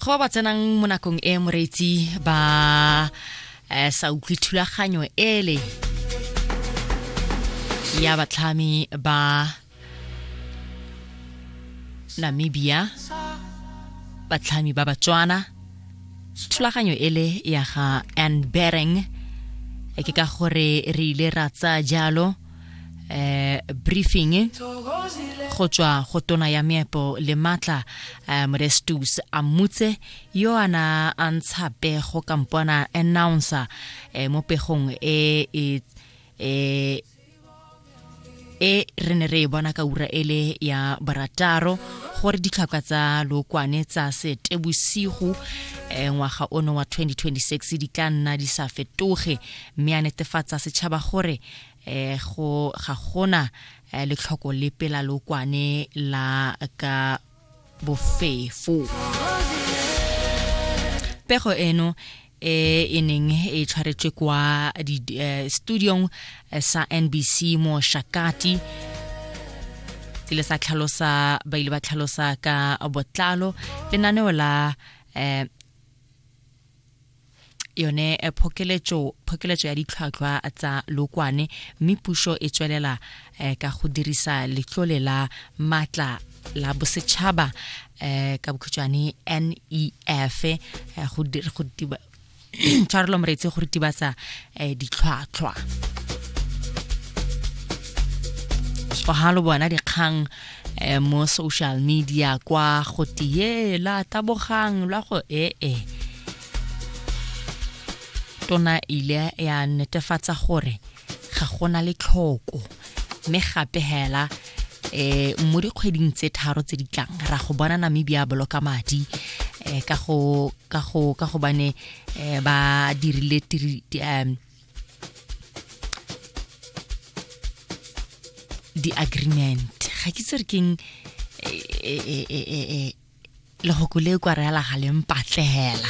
go ba ba tsenang mo nakong e moreetsi ba eh, sa utlwe thulaganyo ele ya batlhami ba namibia batlhami ba batswana thulaganyo ele ya ga anbering eh, ke ka gore re ile ra tsaya jalo eh briefing go tswa go tona ya meepo le matla eh, morestus a mmutse yo a na a ntsha pego kampona announcer eh, mo pegong e e e e re ne re e bona ka ura ele ya barataro gore ditlhaka tsa lokwane tsa setebosigo eh, ngwaga ono wa 2026 di tla nna di sa fetoge mme a netefatsa setšhaba gore eh go ga gona eh, letlhoko le pela lokwane la ka bofefo pego eno e e neng e tshwaretswe kwa eh, studiong eh, sa nbc mo shakati ke le sa tlhalosa ba ile ba tlhalosa ka botlalo lenaneo la um yone eh, phokeletso phokeletso ya ditlhwatlhwa tsa lokwane mme puso e tswelela eh, ka go dirisa letlole la matla la bosetšhaba eh, ka bokhutshwane nef eh, go dir- go tiba tshwarelo moreetse go ritibatsa eh, ditlhwatlhwa so ha lo bona dikgang eh, mo social media kwa go tie la tabogang lwa go ee eh, eh. tona ile ya netefatsa gore ga gona le tlhoko mme gape hela eh mo dikgweding tse tharo tse di tlang ra go bona namibia boloka madi eh ka go ka go ka go bane eh ba dirile di-agreement ga ke itse re keng lehoko le kwa re alagaleng patlegela